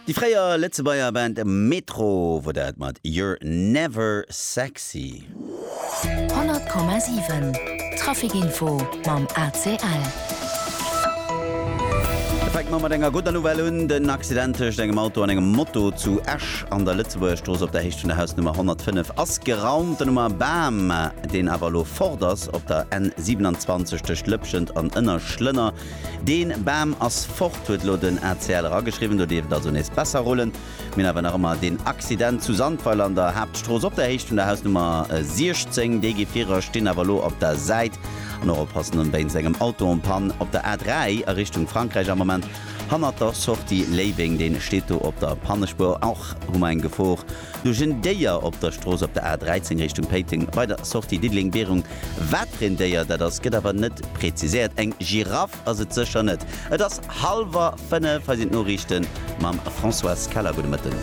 Déi fréier Lëtzebuerger Band Metro wor dat mat You're Never Sexy. 100,7 Trafic Info mam ACL. Et fänkt mer mat enger gudder Nouvelle un, Den Accident tëscht engem Auto an engem Moto zu Esch an der Lëtzebuergerstrooss op der Héicht vun der Hausnummer 105 ass geraumt. Den Oumar Bam, deen awer elo fort ass, op der N 27 tëscht Lëpschent an Ënnerschlënner Deen Baam ass fort, huet lo den ACL erageschriwwen. Do dierft et also nees besser rullen. Mir hunn awer nach ëmmer deen Accident zu Sandweiler an der Haaptstrooss op der Héicht vun der Hausnummer 16. Déi Gefierer stinn awer lo op der Säit an och oppassen an wéinst engem Auto en panne. Op der A3 a Richtung Frankräich am Moment hannert der Sortie Léiweng, deen steet do op der Pannespuer. Och hu mer eng Gefor Duerch en Déier op der Strooss op der A13 Richtung Péiteng bei der Sortie Diddeleng-Bierung. Wat fir een Déier dat ass, gëtt awer net preziséiert. Eng Giraff ass et sécher net. Et ass hallwer fënnef. Hei sinn d'Noriichten mam Françoise Keller. Gudde Mëtten.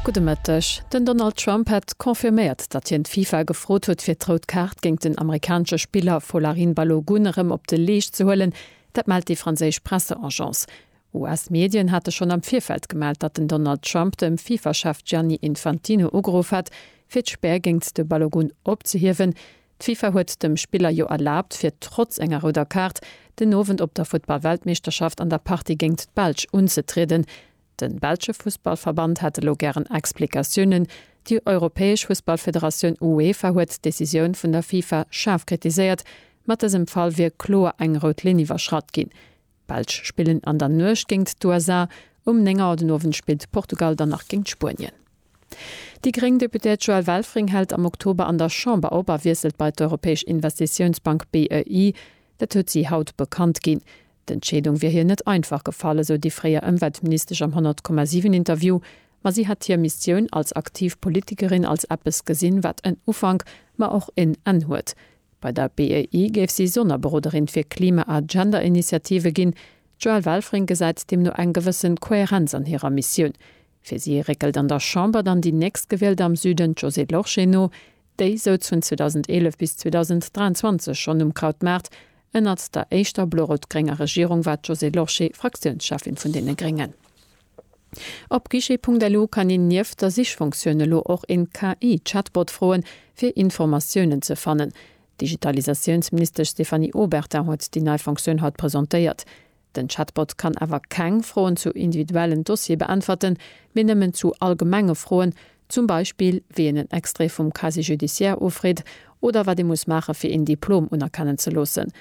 Gudde Mëtteg. Den Donald Trump hätt confirméiert, datt hien d'FIFA gefrot huet, fir d'Rout Kaart géint den amerikanesche Spiller Folarin Balogun erëm op de Leescht ze huelen. Dat mellt déi franséisch Presseagence. US-Medien hate schonn am Virfeld gemellt, datt den Donald Trump dem FIFA-Chef Gianni Infantino ugeruff hat, fir d'Spär géint de Balogun opzehiewen. D'FIFA huet dem Spiller jo erlaabt, fir trotz enger rouder Kaart den Owend op der Futtball-Weltmeeschterschaft an der Partie géint d'Belsch unzetrieden. De belsche Fussballverband hätt elo gären Explikatiounen. Déi europäesch Fussballfederatioun UEFA huet d'Decisioun vun der FIFA schaarf kritiséiert. Mat dësem Fall wier kloer eng rout Linn iwwerschratt ginn. D'Belsch spillen an der Nuecht géingt d'USA. Um 9 Auer den Owend spillt Portugal dann nach géingt Spuenien. Déi gréng Deputéiert Joëlle Welfring hält am Oktober an der Chamber op a wiesselt bei d'Europäesch Investitiounsbank BEI. Dat huet si haut bekannt ginn. D'Entscheedung wier hir net einfach gefall, esou déi fréier Ëmweltministesch am 100,7 Interview. Ma si hätt hir Missioun als aktiv Politikerin als eppes gesinn, wat en Ufank, ma och en Enn huet. Bei der BEI géif si Sonnerberoderin fir Klima a Gender-Initiative ginn. D'Joëlle Welfring gesäit deemno eng gewëssen Kohärenz an hirer Missioun. Fir si réckelt an der Chamber dann déi Nächstgewielt am Süden, d'Josée Lorsché, no. Déi souz vun 2011 bis 2023 schonn um Krautmaart. Ënnert der éischter blo-rout-grénger Regierung war d'Josée Lorsché Fraktiounscheffin vun deene Gréngen. Op guichet.lu kann een nieft der Sichfunktioun elo och een KI-Chatbot froen, fir Informatiounen ze fannen. D'Digitalisatiounsministesch Stéphanie Obertin huet déi nei Funktioun haut presentéiert. Den Chatbot kann awer keng Froen zu individuellen Dossiere beäntwerten, mee nëmmen zu allgemenge Froen, zum Beispill wéi een en Extrait vum Casier judiciaire ufreet oder wat ee muss maache fir een Diplom unerkennen ze loossen.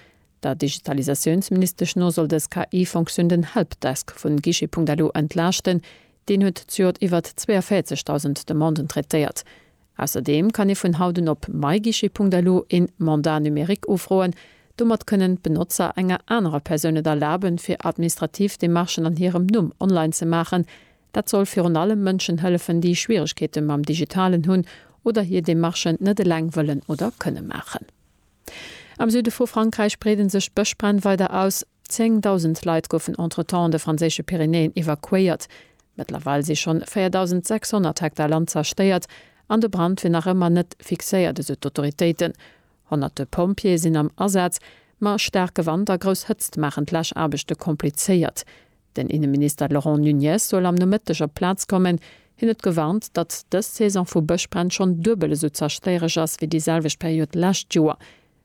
Der Digitalisatiounsministesch no soll dës KI-Fonctioun den Helpdesk vun Guichet.lu entlaaschten. Deen huet zejoert iwwert 42.000 Demanden traitéiert. Ausserdeem kann ee vun haut un op myguichet.lu een Mandat numérique ufroen. Domat kënnen d'Benotzer enger anerer Persoun et erlaben, fir administrativ Demarchen an hirem Numm online ze maachen. Dat soll virun allem Mënschen hëllefen, déi Schwieregkeete mam Digitalen hunn oder hir Demarchen net eleng wëllen oder kënne maachen. Am Süde vu Frankräich breeden sech d'Bëschbränn weider aus. Zéng Dausend Leit goufen entretemps an de franséische Pyrenäen evakuéiert. Mëttlerweil si schonn 4.600 Hektar Land zerstéiert an de Brand wier nach ëmmer net fixéiert, esou d'Autoritéiten. Honnerte Pompjeeë sinn am Asaz, ma staarke Wand a grouss Hëtzt maachen d'Läschaarbechte komplizéiert. Den Inneminister Laurent Nunez soll am Nomëtteg op d'Plaz kommen. Hien huet gewarnt, datt dës Saison vu Bëschbränn schonn duebel esou zerstéiereg ass wéi déi selwecht Period d'lescht Joer.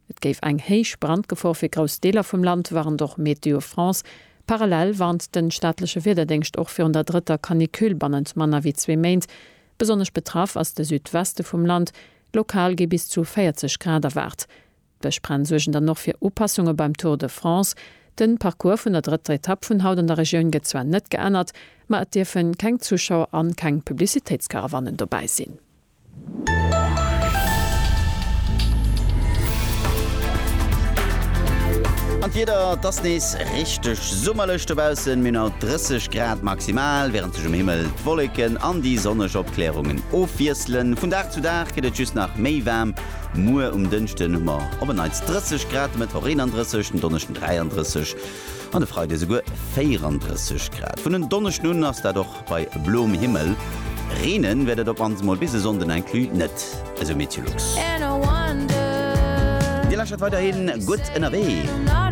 Et géif eng héich Brandgefor fir grouss Deeler vum Land, warnt och Météo France. Parallel warnt de staatleche Wiederdéngscht och virun der drëtter Canicule bannent manner wéi zwee Méint. Besonnesch betraff ass de Südweste vum Land, lokal gi bis zu 40 Grad erwaart. D'Bëschbränn suergen dann och fir Upassunge beim Tour de France. De Parcours vun der drëtter Etapp vun haut an der Regioun gëtt zwar net geännert, ma et dierfe keng Zuschauer an keng Publicitéitskarawannen dobäi sinn. An d'Wieder, et ass nees richteg summerlech dobaussen, mir hunn haut 30 Grad maximal, wärend sech um Himmel d'Wolleken an déi sonneg Opklärungen ofwiesselen. Vun Dag zu Dag gëtt et just nach méi waarm. Muer um Dënschden hu mer op en Neits 30 Grad, de Mëttwoch 31, den Donneschden 33 an de Freide souguer 34 Grad. Vun en Donneschden un ass dat och bei bloem Himmel. Reenen wäert et op mannst emol bis e Sonnden inclus net, esou Meteolux. Dir lächert weiderhin gutt ënnerwee.